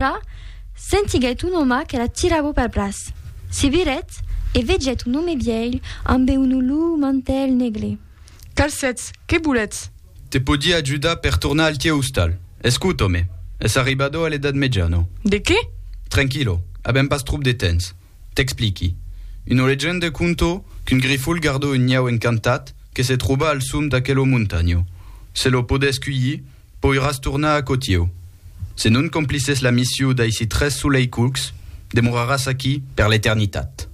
Alora, sentiguèt un òma que la tirava pel braç. Se virèt e vegèt un òme vièlh ambe un olor mantèl negre. Calcètz, qué volètz? Te pòdi ajudar per tornar al tieu ostal. Escut, òme, es arribado a l'edat mejana. De qué? Tranquilo, avèm pas tròp de tens. T'expliqui. Una legenda conto qu'un grifol gardó un niau encantat que se tròba al som d'aquela montanha. Se lo podètz cuilhir, Poiràs tornar a Cotieu. Se non complisses la missiu d'aisi tres soleicucs, demoraràs aquí per l'eternitat.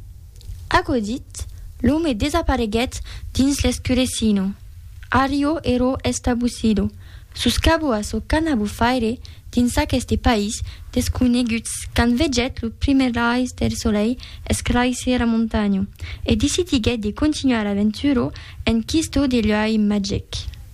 Aquò dit, l'òme desapareguèt dins l'escurecino. Arrio ero estabusido, sus cabo a çò qu'ana bo faire dins aqueste país desconegut quand vegèt lo primièr rais del solei escraisser la montanha e decidiguèt de continuar l'aventura en quisto de luei magic.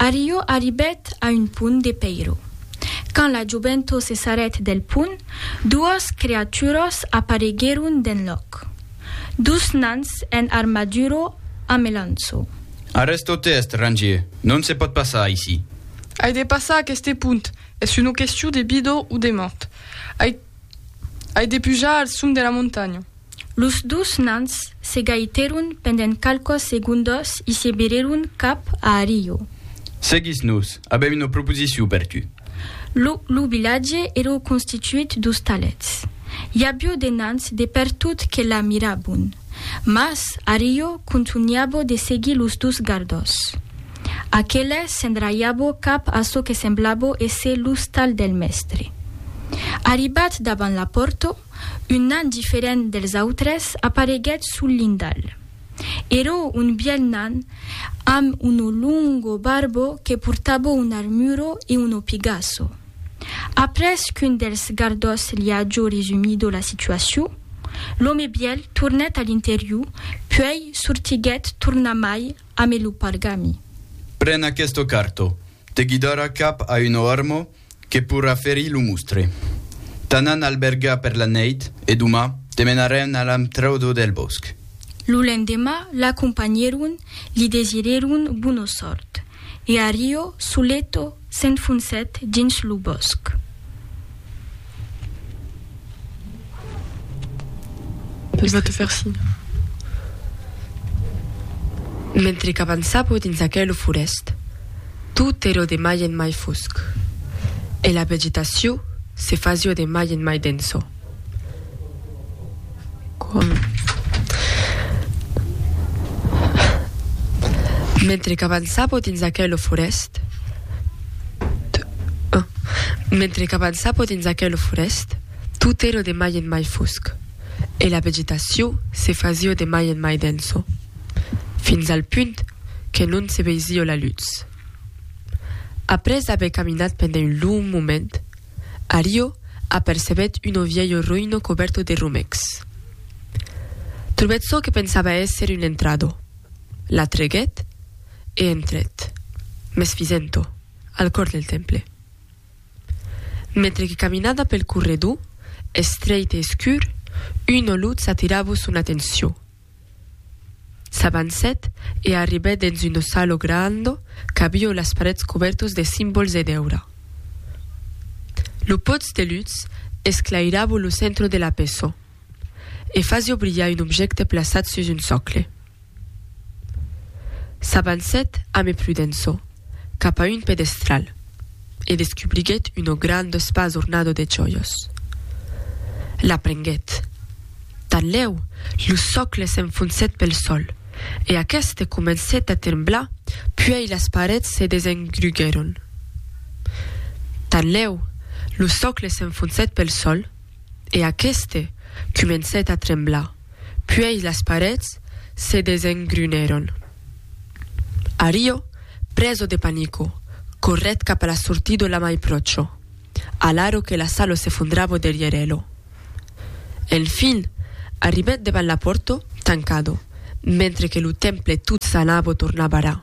Arriò arribèt a un pont de pèiro. Quand la joventó se sarèt del pont, duas creaturas apareguèron d'enlòc. Dus nans en armadura a melanço. Arrèsta-u tèst, Rangier, non se pòt passar aicí. Ai de passar aqueste pont, es una question de vida o de mòrt. Ai de pujar al sum de la montanha. Los dus nans se gaitèron pendent qualquas segondas e se virèron cap a Arillo. Seguís-nos, avèm una proposicion per tu. Lo lo vilatge èra constituit d'ostalets. I avió de nans de pertot que la mirabon. Mas Arillo contunhava de seguir los dus gardas. Aqueles s'endraiava cap a çò que semblava èsser l'ostal del mèstre. Arribat davant la pòrta, Un nan diferent dels autres apareguèt sul lindal. Èra un bièlh nan amb una longa barba que portava una armura e una pigaça. Après qu'un dels gardas li aja resumido la situacion, l'òme bièlh tornèt a l'interior, puèi sortiguèt tornamai amé lo pargami. Pren aquesta carta. Te guidarà cap a una arma que pourra ferir lo mostre. T'anan albergar per la nèit e doma te menarèn a l'antraudo del bòsc. Lo lendemà l'acompanhèron, li desirèron bona sòrt e Ario, soleto, s'enfoncèt dins lo bòsc. Pus va te faire signe. Mentre qu'avançavo dins aquelo forèst, tot èro de mai en mai fosc, e la vegetacion se fasio de mai en mai denso. Mentre qu'avançapo dins aquelo forest, mentre qu'avançapo dins aquelo forest, tot ero de mai en mai fosc, e la vegetaciò se fasio de mai en mai denso, fins al punt que non se veisio la lutz. Après aver caminat pendent un long moment, Ario apercebèt uno vielho roïno cobèrto de romècs. Trobèt çò que pensava èsser un entrado, l'atreguèt e entrèt, mès fisent-o, al còr del temple. Mentre que caminada pel corredor, estreit e escur, una lutz atiravo son atencion. S'avancèt e arribèt dens un ossalo grando qu'avió las parets cobèrtos de simbols e d'èura. Lo pòts de lutz esclairavo lo centro de la peço e fasió brilhar un objècte plaçat sus un socle. S'avancèt ame prudenço cap a un pedestral. e descubriguèt un grand espas ornado de jòias. La prenguèt. Tanlèu, lo sòcle s'enfonsèt pel sòl, e aqueste comencèt a tremblar puèi las parets se desengruguèron. Tanlèu, lo sòcle s'enfonsèt pel sòl. e aqueste comencèt a tremblar, puèi las parets se desengrunèron. Ario, preso de panico, corrèt cap a la sortido la mai pròcho, alaro que la salo s'efondravo derrièr elo. Enfin, arribèt devan l'apòrto, tancado, mentre que lo temple tot sanavo tornava ra.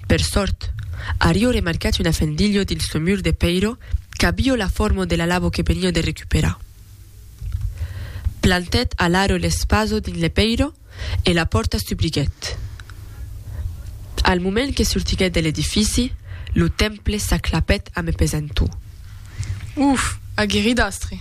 Per sòrt, ario remarcat una fendilho dins lo mur de pèiro qu'avio la forma de la lavo que venio de recuperar. Plantèt alaro l'espazo dins le pèiro e la pòrta s'ubriguèt. Al moment que sortiguèt de l'edifici, lo temple s'aclapèt a me pesantor. Uf! Agueridastre!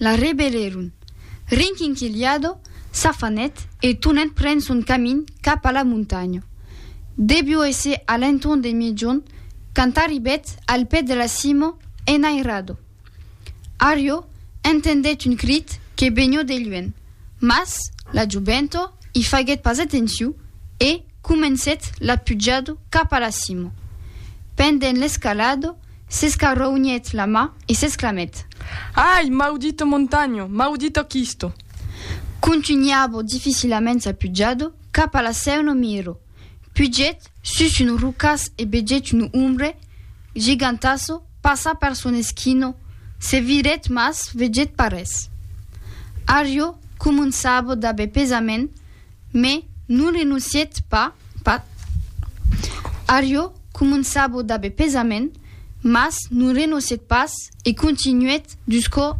La rebelèron. Rinquinquilhado, s'afanèt e tonèt pren son camin cap a la montanha. Devió èsser a l'entorn de miègjorn quand arribèt al pè de la cima enairado. Ario entendèt un crit que venió de luènh, mas la joventa i faguèt pas atencion e comencèt la pujada cap a la cima. Pendent l'escalada, S'escarronhèt la ma e s'exclamèt. Ai! Maudito Montagno! Maudito Chisto! Contunhavo dificilament sa pujada cap a la Sèu no Miro. Pugèt sus un rocàs e vegèt un ombre gigantassa passar per son esquina, se virèt mas vegèt pas res. Ario començava d'aver pesament. Mes non renoncièt pas, pas. Ario començavo d'aver pesament, mas non renoncièt pas e continuèt jusqu'au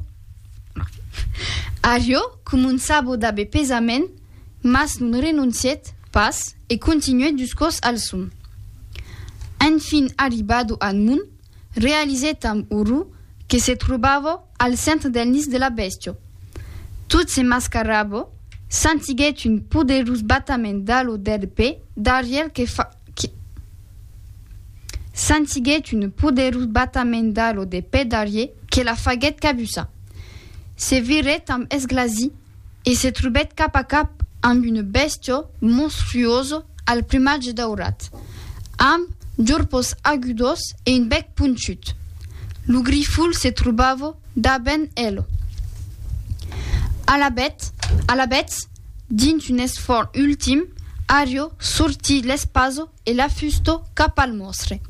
Ario començavo d'aver pesament, mas non renoncièt pas e continuèt jusqu'aus al son. Enfin arribado al mon, realizèt amb orror que se trobava, Al centre del nis de la bèstia. Tot se mascarava, sentiguèt un poderós batament d'alo d'èrpe darrièr que fa, que, sentiguèt un poderós batament d'alo de pè darrièr que la faguèt cabussar. Se virèt amb esglasi. e se trobèt cap a cap amb una bèstia monstruosa al plumatge daurat, amb jorpos agudos e un bèc ponchut. Lo grifol se trobava davent ela. Alabèth, alabèths, dins un esfòrç ultim, Ario sortí l'espasa e la fusto cap al mòstre.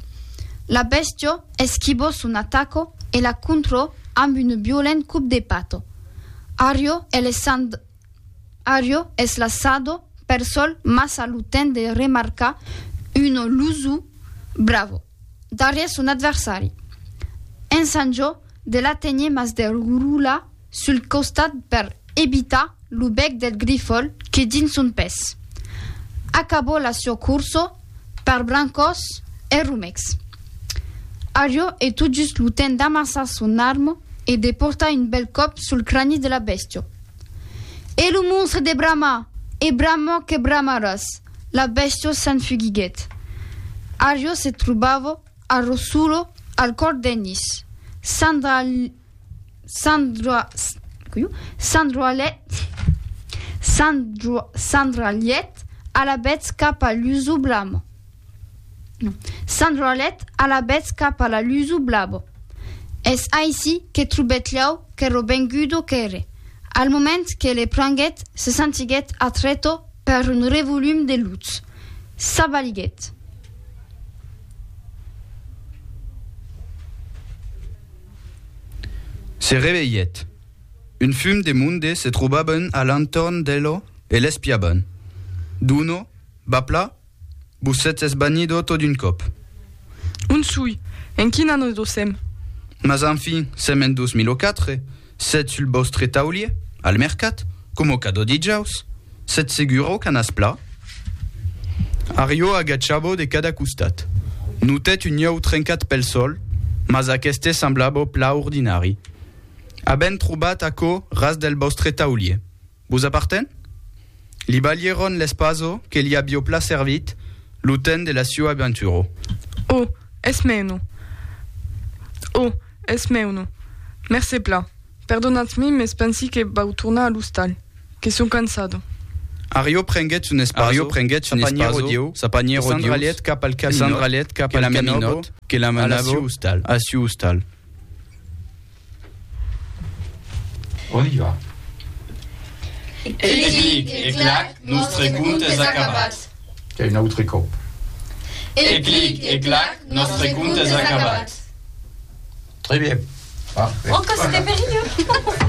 La bèstio esquibò son ataco e la contrò amb un violent cop de pato. Ario es laissand Ario es lassado per sol mas a lo temps de remarcar un lusu bravo darrièr son adversari. Ensanjo de la tenir mas de roula sul costat per ebitar lo bèc del grifol que dins son pes. Acabó la sua corso per brancòs e romecs. Arió e tot just lo temps d'amassar son armo e de portar un bèl còp sul crani de la bèstia. E lo monstre de bramar e bramar que bramaràs! La bèstia s'enfugiguèt. Arió se trobava A Rossulo, al còr d'Ennis. Sandra Sandra coiu Sandra Llet Sandra Sandra Llet a la betz cap a l'usu blamo. No. Sandra Llet a la betz cap a la l'usu blabo. Es aicí que trobèt lhau que robengudo qu'ère. Al moment que le pranguèt, se sentiguèt atrèto per un revolum de lutz. S'abaliguèt. Se revelhèt. Un fum de monde se trobavan a l'entorn d'elo e l'espiavan. D'uno, Bapla, vos sètz esbanido tot d'un còp. On soi? En quin annus dosèm? Mas enfin, sèm en 2004. Sètz sul vòstre taulier, al mercat, coma cada dijaus, sètz segura o canàs pla? Arriò agachava de cada costat. Notèt un ieu trencat pel sòl, mas aqueste semblava pla ordinari. Avèm trobat aquò ras del vòstre taulier. Vos aparten? Li balhèron l'espaso que li avió pla servit lo temps de la sua aventuro. O, es mèuno! O, es mèuno! Mercé pla. Perdonatz-mi, mes pensi que vau tornar a l'ostal, que sò cansado. Arió prenguèt son espaso, sa panièra odiós, e s'endralhèt cap al caminòt que la menòbo a la siu ostal. On i va. Ei clic e clac, nòstre cont es acabat. E un autre còp. Ei clic e clac, nòstre cont es acabat. Très bien. Parfait. Encore, c'était périlleux.